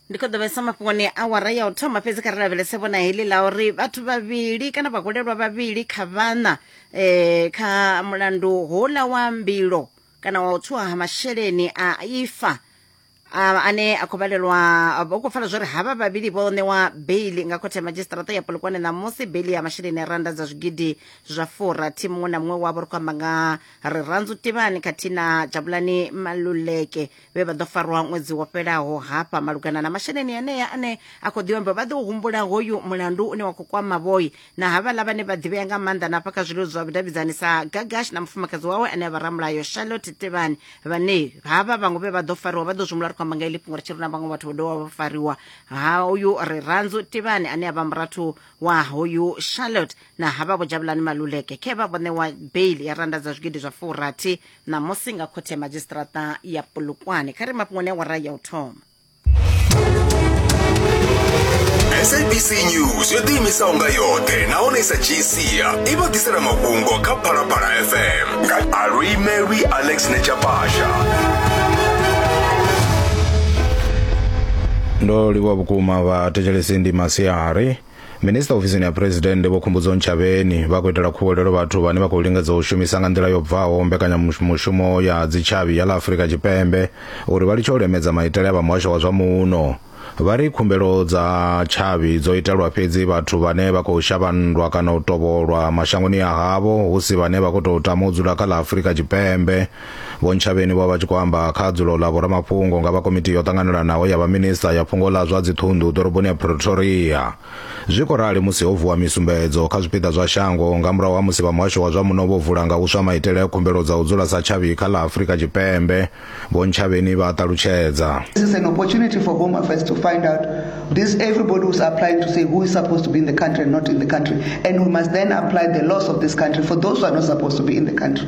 ndi khou ḓo vhesa mafhungoni awara ya u thoma fhedzi kha ri lavhelese vhona heḽi ḽa uri vhathu vhavhili kana vhahulelwa vhavhili kha vhana um kha mulandu houḽa wa mbilo kana wa u tswiwa ha masheleni a ifa a- ane a khou vhalelwa vho khou pfala zwori havha vhavhili vho ṋewa beili nga khothe ya madzhisiṱaraṱa ya polokwane ṋamusi beili ya masheleni a randa dza zwigidi zwa furathi muṅwe na muṅwe wavho ri khou amba nga rirandzu tivhani khathihi na jabulani maluleke vhe vha ḓo farwa ṅwedzi wo fhelaho hafha malugana na masheleni enea ane a khou ḓivha vha ḓo humbula hoyu mulandu une wa khou kwama vhoi na havhaḽa vhane vha ḓivhea nga maanḓa na hafha kha zwilelo zwa vhudavhidzani sa gagash na mufumakadzi wawe ane a vha ramulayo charlotte tevhani vhane havha vhaṅwe vhe vha ḓo fariwa vha ḓo zwi humbula ri khou amba nga ili fhungo ri tshi ri na vhaṅwe vhathu vho dovha vha fariwa ha uyu ri ranzo tevhani ane a vha murathu wa hoyu charlotte na havha vho jabulani maluleke khe vha vho ṋewa bail ya randa dza zwigidi zwa furathi ṋamusi nga khothe ya madzhisiṱiraṱa ya polokwane kha ri mafhungoni awara ya u thoma sabc news yo ḓiimisaho nga yoṱhe nahone i sa dzhii sia i vha ḓisela mafhungo kha phalaphala fm nga alwi mary alex nechapasha ndo livhuwa vhukuma vhathetshelesi ndi masiari Minista ofisini ya Phresidennde Vho Khumbudzo Ntshavheni vha khou itela khuwelelo vhathu vhane vha khou lingedza u shumisa nga nḓila yo bvaho mbekanyamushumo ya dzitshavhi ya ḽa Afrika Tshipembe uri vha litshe u lemedza maitele a vha muhasho wa zwa muno. Vha ri khumbelo dza tshavhi dzo itelwa fhedzi vhathu vhane vha khou shavha nndwa kana u tovholwa mashangoni a havho hu si vhane vha khou tou tama u dzula kha ḽa Afrika Tshipembe. Vho Ntshavheni vho vha tshi khou amba kha dzulo ḽa vhoramafhungo nga vha komiti yo ṱanganelanaho ya vhaminista ya fhungo ḽa zwa dziṱhunḓu ḓoroboni ya Pretoria. Zwi khou rali musi ho vuwa misumbedzo kha zwipiḓa zwa shango nga murahu ha musi vha muhasho wa zwa muno vho vula nga huswa maitele a khumbelo dza u dzula sa tshavhi kha ḽa Afrika Tshipembe, Vho Ntshavheni vha a ṱalutshedza. This is an opportunity for Home Affairs to find out this everybody who's applying to say who is supposed to be in the country and not in the country and we must then apply the laws of this country for those who are not supposed to be in the country.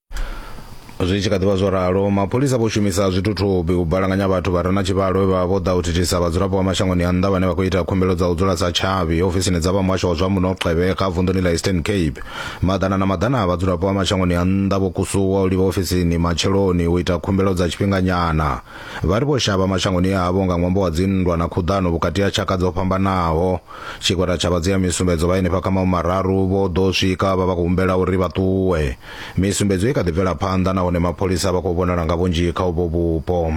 zwi tshi kha ḓivha zwo ralo mapholisa vho shumisa zwithuthubi u balanganya vhathu vha re na tshivhalo vhe vha vho ḓa u thithisa vhadzulapo vha mashangoni a nnḓa vhane vha khou ita khumbelo dza u dzula sa tshavhi ofisini dza vha muhasho wa zwa muno xebe kha vunḓuni ḽa eastern cape maḓana na maḓana a vhadzulapo vha mashangoni a nnḓa vho kusuwa u livha ofisini matsheloni u ita khumbelo dza tshifhinganyana vha ri vho shavha mashangoni avho nga ṅwambo wa dzinndwa na khuḓano vhukati ha tshaka dzo fhambanaho tshigwada tsha vhadzia misumbedzo vha henefha kha maumararu vho ḓo swika vha vha khou humbela uri vha ṱuwe Misumbedzo i kha ḓi bvela phanḓa nahone mapholisa vha khou vhonala nga vhunzhi kha uvho vhupo.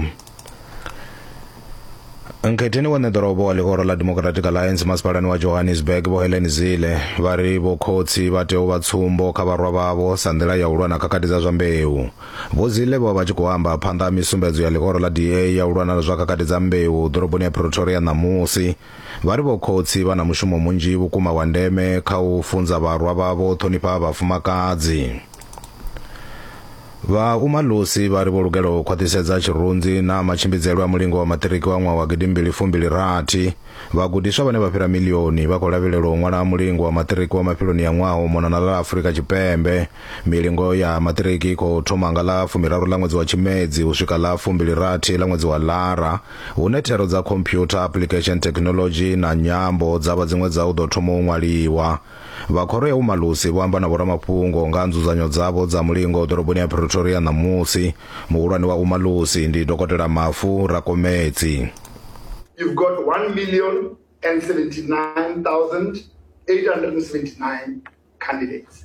Nkhetheni wa ṋeḓorobo wa ḽihoro ḽa Democratic Alliance masipalani wa Johannesburg vho Helen Zille vha ri vho khotsi vha tea u vha tsumbo kha vharwa vhavho sa nḓila ya u lwa na khakhathi dza zwa mbeu. Vho Zille vho vha tshi khou amba phanḓa ha misumbedzo ya ḽihoro ḽa DA ya u lwa na zwa khakhathi dza mbeu ḓoroboni ya Pretoria ṋamusi. Vha ri vhokhotsi vha na mushumo munzhi vhukuma wa ndeme kha u funza vharwa vhavho u ṱhonifha vhafumakadzi. Vha Umalusi vha ri vho lugela u khwaṱhisedza tshirunzi na matshimbidzele a mulingo wa maṱiriki wa ṅwaha wa gidimbili fumbili rathi. Vhagudiswa vhane vha fhira milioni vha khou lavhelelwa u ṅwala mulingo wa maṱiriki wa mafheloni a ṅwaha u mona na ḽa Afurika Tshipembe. Milingo ya maṱiriki i khou thoma nga ḽa fumiraru ḽa ṅwedzi wa Tshimedzi u swika ḽa fumbili rathi ḽa ṅwedzi wa Lara. hune thero dza computer application technology na nyambo dza vha dziṅwe dza u ḓo thoma u ṅwaliwa vha khoro ya umalusi vho amba na vhoramafhungo nga nzudzanyo dzavho dza mulingo ḓoroboni ya pretoria ṋamusi muhulwane wa umalusi ndi dokotela mafu rakomedzi You've got 1 million and 79,879 candidates.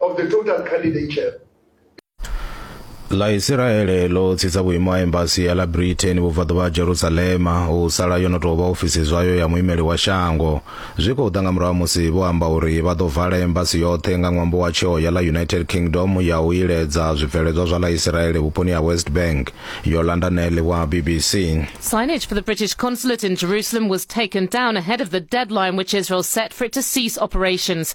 of the total candidate share. ḽa isiraele ḽo tsitsa vhuimo ha embasi ya ḽa britain vhubvaḓuvha ha jerusalema u sala yo no tou vha ofisi zwayo ya muimeli wa shango zwi khou ḓa nga murahu ha musi vho amba uri vha ḓo vala embasi yoṱhe nga ṅwambo wa tsheo ya ḽa united kingdom ya u iledza zwibveledzwa zwa ḽa isiraele vhuponi ha west bank yo landa nele wa bbc Signage for the British consulate in Jerusalem was taken down ahead of the deadline which Israel set for it to cease operations.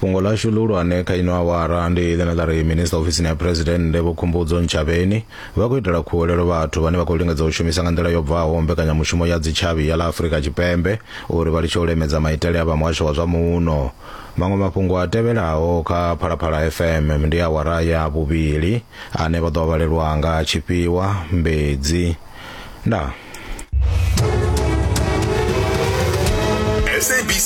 fhungo lashu ḽihulwane kha ino awara ndi ḽine ḽa ri minista ofisini ya phuresidennde vho khumbudzo ntshavheni vha khou itela khuwelelo vhathu vhane vha khou lingedza u shumisa nga nḓila yo bvaho mbekanyamushumo ya dzitshavhi ya ḽa afurika tshipembe uri vha litshe u lemedza maitele a vha muhasho wa zwa muno maṅwe mafhungo a tevhelaho kha phalaphala fm ndi awara ya vhuvhili ane vha ḓo vhalelwa nga tshifhiwa mbedzi ndaa